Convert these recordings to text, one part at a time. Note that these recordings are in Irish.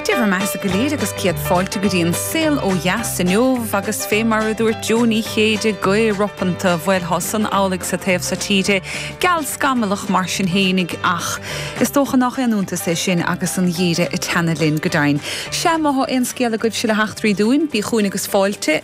Dé bhur mbeathasa go léir agus céad fáilte go dtí an Saol ó Dheas inniu agus fé mar a dúirt Jo Ní Chéide, gaoth ropánta, bhuel thá san amhlaidh sa taobh so tíre, geal scamallach mar sin fhéinig ach is dócha nach aon iontas é sin agus an geimhreadh ag teannadh linn, go deimhin. Sea, má thá aon scéal agaibhse le heachtraí dúinn, bíg' chugainn agus fáilte.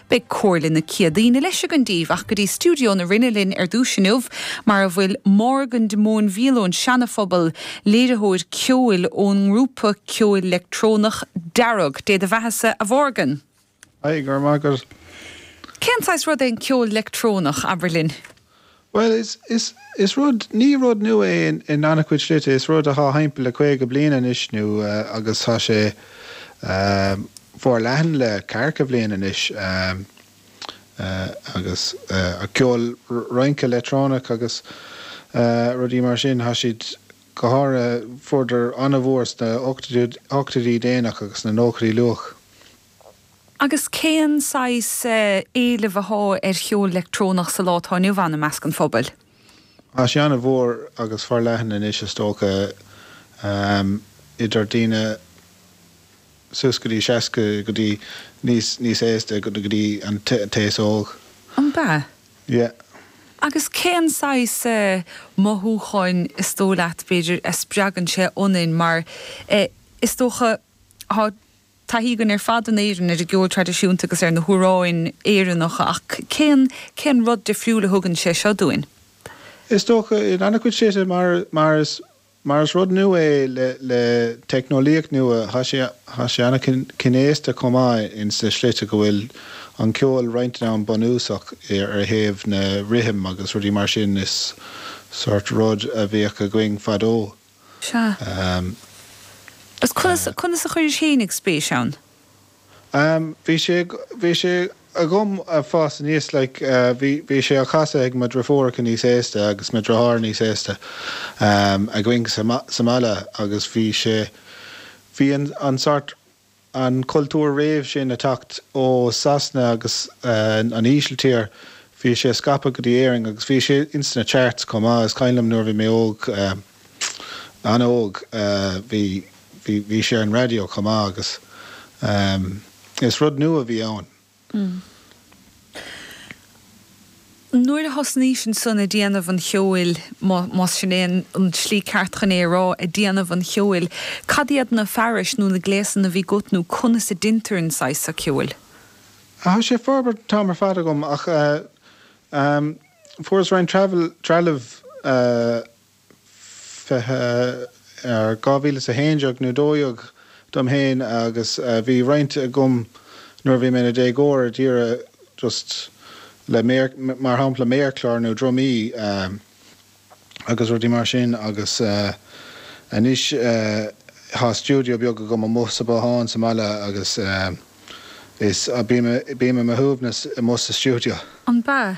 Beidh Comhairle na Céadaoine leis againn daoibh ach go dtí stiúideo na Rinne linn ar dtúis inniu mar a bhfuil Morgan de Móinbhíol ón Seanaphobal, léiritheoir ceoil ón ngrúpa ceoil leictreonach Dearg. Dé do bheathasa, a Mhorgan! Haigh, go raibh maith agat. Cén saghas rud é an ceol leictreonach, abair linn? Bhuel, is rud, ní rud nua é in an-chuid slite. Is rud athá timpeall le caoga bliain anois nó agus thá sé forleathan le ceathracha bliain anois agus ceol rince leictreonach agus rudaí mar sin. Thá siad go háirithe, fuaireadar an-mhór sna hochtóidí déanach agus sna nóchaidí luath. Agus cén saghas éileamh athá ar cheol leictreonach sa lá atá inniu ann i measc an phobail? Tá sé an-mhór agus forleathan anois is dócha, idir daoine suas go dtí seasca go dtí níos, níos aosta go dtí an t-aos óg. An bea? Yeah. Agus cén saghas mothúcháin is dóigh leat, b'fhéidir, a spreagann sé ionainn mar is dócha, athá, taithí againn ar fad in Éirinn ar an gceol traidisiúnta agus ar na hamhráin Éireannacha ach cén, cén rud difriúil a thugann sé seo dúinn? Is dócha, in an-chuid slite, mar, mar is, mar is rud nua é le, le teicneolaíocht nua, tá sé, tá sé an-chnéasta chomh maith in sna slite go bhfuil an ceol rince an-bhunúsach ar thaobh na rithim agus rudaí mar sin is sórt rud a bhíodh againn fadó. Sea. Agus conas, conas a chuiris fhéinig spéis ann? Em, bhí sé, bhí sé agam a' fás aníos like eh bhí, bhí sé á casadh ag mo drifiúracha níos aosta agus mo dritháir níos aosta em againn sa, sa bhaile agus bhí sé, bhí an, an sórt, an cultúr rave sin ag teacht ó Sasana agus an Ísiltír bhí sé scaipthe go dtí Éirinn agus bhí sé ins na charts chomh maith is cuimhin liom nuair a bhí mé óg an-óg bhí bhí bhí sé ar an radio chomh maith agus is rud nua a bhí ann. Nuair a thosnaís ansan ag déanamh an cheoil, más sin é an tslí cheart chun é a rá, ag déanamh an cheoil, cad iad na fearais nó na gléasanna a bhí 'gut nó conas a déintear an saghas seo ceoil? Tá sé ag forbairt an t-am ar fad agam ach fuaireas roinnt trealamh 2011 nó 12 dom féin agus bhí roinnt agam nuair a bhí mé i mo dhéagóir a d'iarradh just le mar shampla méarchlár nó drumaí agus rudaí mar sin agus anois tá stiúideo beag agam amuigh sa bhothán sa mbaile agus is bím i mo shuaimhneas amuigh sa stiúideo. An bea,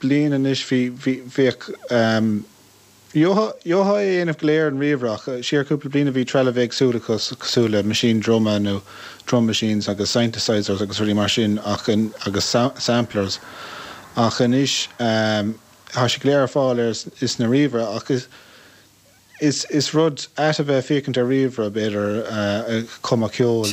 bliain anois bhí, bhí, bhíodh ehm á dhéanamh go léir ar ríomhaire ach, siar cúpla bliain a bhí trealamh éagsúla cos, cosúil le meaisín druma nó drum machines agus synthesisers agus rudaí mar sin ach an, agus sam, samplers ach anois ehm tá siad go léir ar fáil ar, is ar ríomhaire ach is, is, is rud ait a bheith ag féachaint ar ríomhaire b'fhéidir eh cumadh ceol,